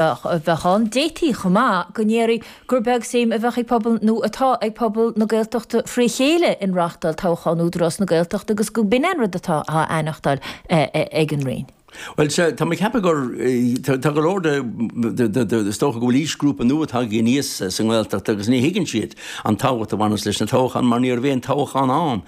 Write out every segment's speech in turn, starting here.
bheadh ann. D'fhéadfaí chomh maith go ndéarfaí gur beag suim a bheadh ag pobal, nó atá ag pobal, na Gaeltachta fré chéile in reáchtáil toghchán Údarás na Gaeltachta agus go b'in an rud atá á aithneachtáil ag an Roinn. Bhuel, sea, tá mé ag ceapadh gur, tá go leor de, is dócha go bhfuil aoisghrúpa nua tagtha aníos sa nGaeltacht agus ní thuigeann siad an tábhacht a bhaineas leis na toghcháin mar ní raibh aon toghchán ann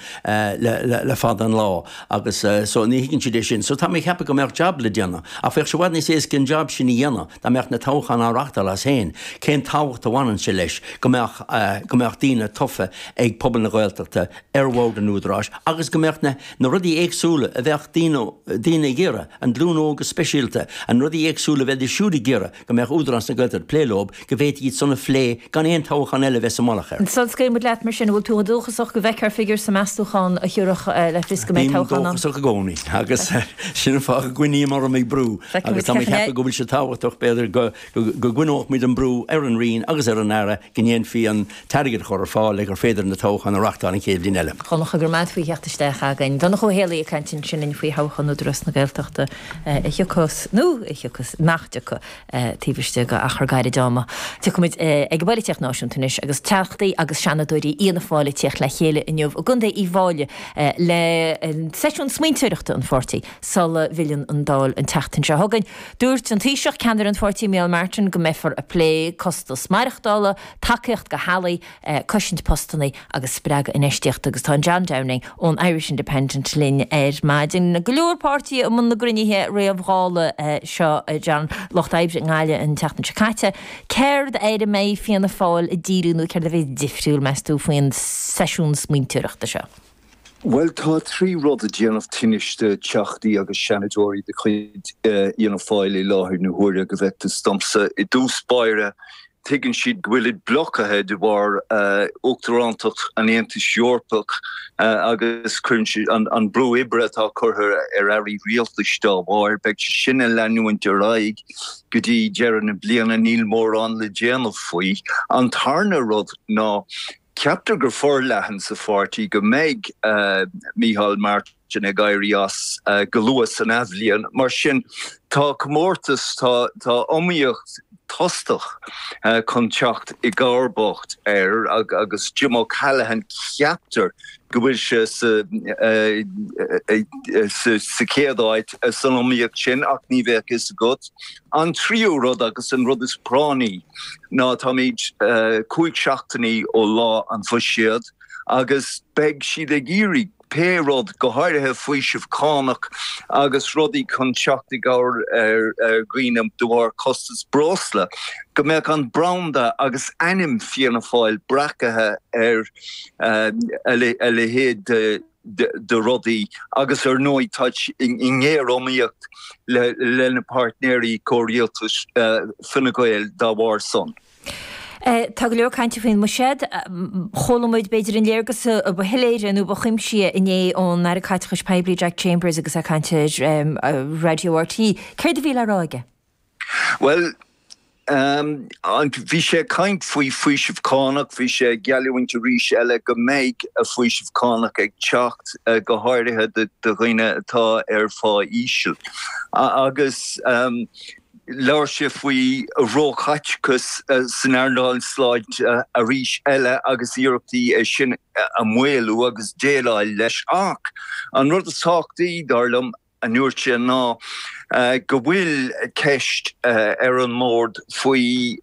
le fada an lá. Agus so, ní thuigeann siad é sin. So, tá mé ag ceapadh go mbeadh jab le déanamh. Ach bheadh sé i bhfad níos éasca an jab sin a dhéanamh dá mbeadh na toghcháin á reachtáil as féin. Cén tábhacht a bhaineann sé leis go mbeadh, go mbeadh daoine tofa ag pobal na Gaeltachta ar bhord an Údaráis agus go mbeadh na, na rudaí éagsúla a bheadh daoine, daoine ag iarraidh, an ghlúin óg go speisialta, na rudaí éagsúla a bheidís siúd ag iarraidh. go mbeadh Údarás na Gaeltachta ag plé leo, go bhféadfaí iad sin a phlé gan aon toghchán eile a bheith sa mullach air. Sula scaoile muid leat mar sin? An bhfuil tú dóchasach go bhfeicfear figiúr sa meastachán a thiúrfadh le fios go mbeidh toghchán ann? Bím dóchasach i gcónaí agus sin an fáth go gcoinním orm ag brú agus tá mé ag ceapadh go bhfuil sé tábhachtach b'fhéidir go gcoinneodh muid an brú ar an Roinn agus ar an Aire go ndéanfaí an t-airgead a chur ar fáil le gur féidir na toghcháin a reachtáil an chéad bhliain eile. Chonacthas go raibh meas faoi theacht isteach againn. Donncha Ó hÉallaithe ag caint ansin linn faoi thoghchán Údarás na Gaeltachta a thiocfas, nó nach dtiocfaidh, taobh istigh d'achar gairid ama. Tiocfaimid ag an bpolaitíocht náisiúnta anois agus Teachtaí agus Seanadóirí Fhianna Fáil ag tíocht le chéile inniu i gContae Uíbh Fháilí le seisiún smaointeoireachta an pháirtí sula bhfilleann an Dáil an tseachtain seo chugainn. Dúirt an Taoiseach, ceannaire an pháirtí Micheál Martin go mbeifear ag plé costas maireachtála, tacaíocht do theaghlaigh, cosaint postanna agus spreagadh infheistíochta agus tá John Downing ón Irish Independent linn ar maidin. Go leor páirtithe i mbun na gcruinnithe réamh-Dhála seo a John, Lucht Oibre i nGaillimh an tseachtain seo caite, céard air a mbeidh Fianna Fáil ag díriú nó céard a bheidh difriúil meas tú faoin seisiún smaointeoireachta seo? Bhuel tá trí rud ag déanamh tinnis do Theachtaí agus Seanadóirí de chuid Fhianna Fáil i láthair na huaire, go bhfeictear domsa. I dtús báire tuigeann siad go bhfuilid blocaithe de bharr Uachtarántacht an Aontais Eorpaigh agus tuigeann siad an brú oibre atá curtha ar Airí Rialtais dá bharr. Beidh sé sin ag leanúint ar aghaidh go dtí deireadh na bliana. Níl mórán le déanamh faoi. An tarna rud ná. Ceaptar go forleathan sa pháirtí go mbeidh Micheál Martin ag éirí as go luath san athbhliain. Mar sin tá comórtas, tá iomaíocht tostach chun teacht i gcomharbacht air agus Jim O'Callaghan ceaptar go bhfuil sé sa chéad áit san iomaíocht sin ach ní bheadh fhios agat. An tríú rud agus an rud is práinní ná táimid cúig seachtainí ó lá an bhuiséid agus beidh siad ag iarraidh pé rud, go háirithe faoiseamh cánach agus rudaí chun teacht i gcabhair ar dhaoine de bharr costas breosla, go mbeadh an branda agus ainm Fianna Fáil breacaithe ar a leithéid de. de rudaí agus ar ndóigh táid i ngéariomaíocht lena páirtnéirí comhrialtais, Fine Gael, dá bharr san. Tá go leor cainte faoin mbuiséad. Chuala muid b'fhéidir an léargas ba shoiléire nó ba chuimsithí inné ón Aire Caiteachais Poiblí Jack Chambers agus é ag caint ar Raidió RTÉ. Céard a bhí le rá aige? Bhuel, an, bhí sé ag caint faoi faoiseamh cánach, bhí sé ag geallúint arís eile go mbeidh faoiseamh cánach ag teacht, go háirithe do dhaoine atá ar phá íseal. Agus labhair sé faoi róchaiteachas san earnáil sláinte arís eile agus iarrachtaí é sin a mhaolú agus déileáil leis. Ach an rud is tábhachtaí, dar liom, a dúirt sé ná go bhfuil ceist ar an mbord faoi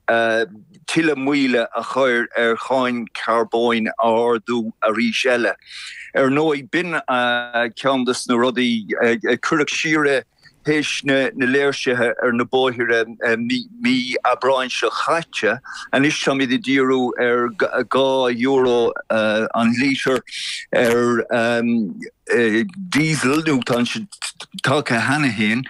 tuilleadh moille a chur ar cháin charbóin a ardú arís eile. Ar ndóigh, b'in ceann de na rudaí a cuireadh siar théis na léirsithe ar na bóithre mí Aibreáin seo chaite. Anois táimid ag díriú ar dhá euro an lítear ar. Diesel, nó tá sé tagtha cheana féin.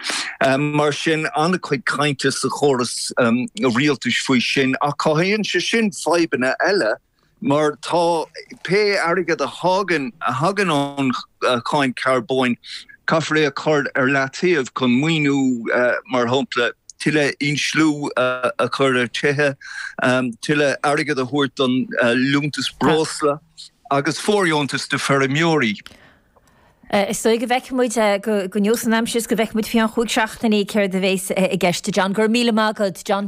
Mar sin, an-chuid cainte sa chóras rialtais faoi sin, ach cothaíonn sé sin fadhbanna eile, mar tá pé airgead a thagann a thagann ón cháin carbóin, caithfear é a chur ar leataobh chun maoiniú, mar shampla, tuilleadh insliú a chur ar tithe, tuilleadh airgid a thabhairt don liúntas breosla. agus fóirdheontas do feirmeoirí. Is dóigh go bhfeicfidh muid go neosfaidh an aimsir is go bhfeicfidh muid faoi cheann chúig seachtainí céard a bheas i gceist. John, go raibh míle maith agat. John.